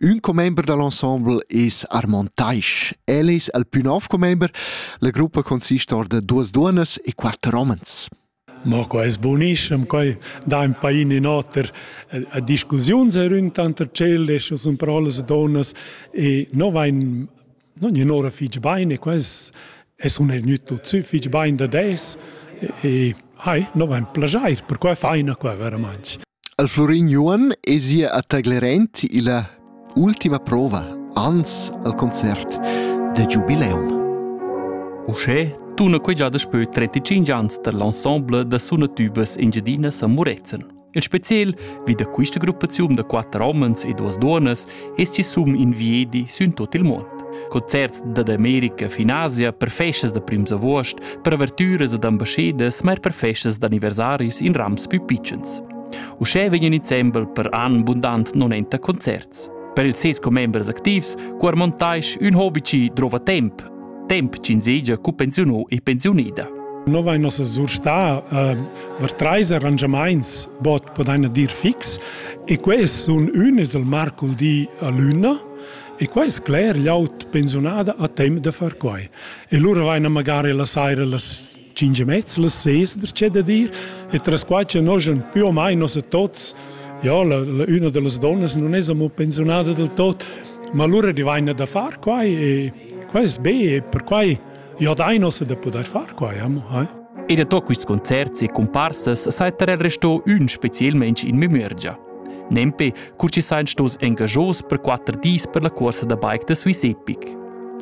Ün commember da l'ensemble es Armand Taisch. El es el pü nov commember. La gruppa consist or da duas duonnas e quatter homens. Ma quai es bonischem, quai dà in pain in oter. A discussiun se rün tanter tschel e sun pro las donnas e no vain Non gnanora fich bain e quels e sun eir gnüt tuot sü fich bain dad es e hai, no vain plajair, perquai faina qua veramaing. Al Florin Juan es ia a taglerent illa ultima prova, ans al concert de Giubileum. Uschè tuna quai già daspö 35 ans tar l'ensemble da sunatübas engiadinas a Murezzan. En spezial vi da questa gruppaziun da quatter homens e duas duonas es chi sum in viedi sün tot il mond. Concerts dad America fin Asia per festas da prims avuost, per avertüras ed ambascedas, ma er per festas d'anniversaris in rams pü pitschens. Uschè vegnan insembel per an bundant 90 concerts. Per ils ses commembers activs, cuar montais ün hobi chi drova temp, temp ch'ins seigi cu pensiuno e pensiunida. No vain nossa surstar eh, var treis arrangiamaints bod podaina dir fix e quest sun ün es il marco di a lüna e quai es cler llaut pensiunada a temp da far quai. E lura vaina magari la saira las cinque mezzi le ses der c'è da dir e tras qua che noschen più o mai nos tots ja la, la una de las donnas non es amo pensionada del tot ma allora divina da far qua e qua es be e per quai ja dai nos da poter far qua amo eh? E da to quist concert e comparsas saetter el resto ün specielmente in memoria. Nempe, cur chi s'hain stos engajos per quatter dis per la cuorsa da bike da Swiss Epic.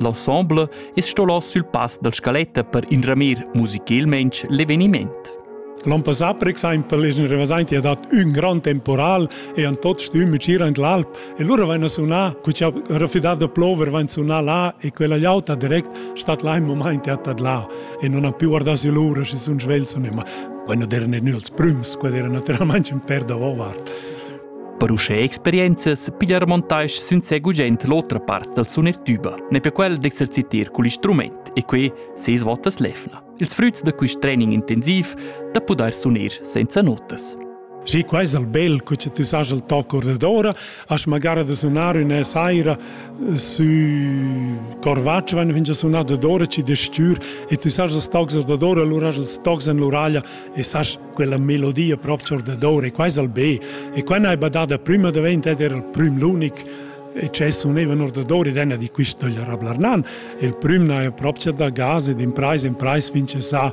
L'ensemble es stolos sül pass dal scaletta per inramir musicalmaing l'eveniment. L'an passà, per exempel, es rimas aint dat ün gran temporal e an tots stüm gira in l'alp e lura vain a sunar, cu cha rafidà da plover vain sunar là e quella gliauta direct stat là in momaint at là e non ha più guardà sü l'ura, schi sun svelso nemma. Quando erano els prüms, quando erano naturalmente un per davart. Per uschè experienzas pigliar montage sun se gugent l'otra part dal suner tuba. Ne per quel d'exercitar cul instrument e quei seis votas lefna. Ils früts da quist training intensiv da pudair suner senza notas. Sì, questo è il bel che tu sai il toc ordinatore, As magara da sunar üna saira sü Corvatsch vain fingià sunà dadora ci da stür e tu sas las tocs dadora, allura has els tocs in l'uraglia e sas quella melodia proprio dadora e qua es al be. E qua n'hai badada prima davent ed era il prüm l'unic e c'è sunevano ordadori dena di questo gli arablarnan il prüm n'ha proprio da gas ed in price in price vince sa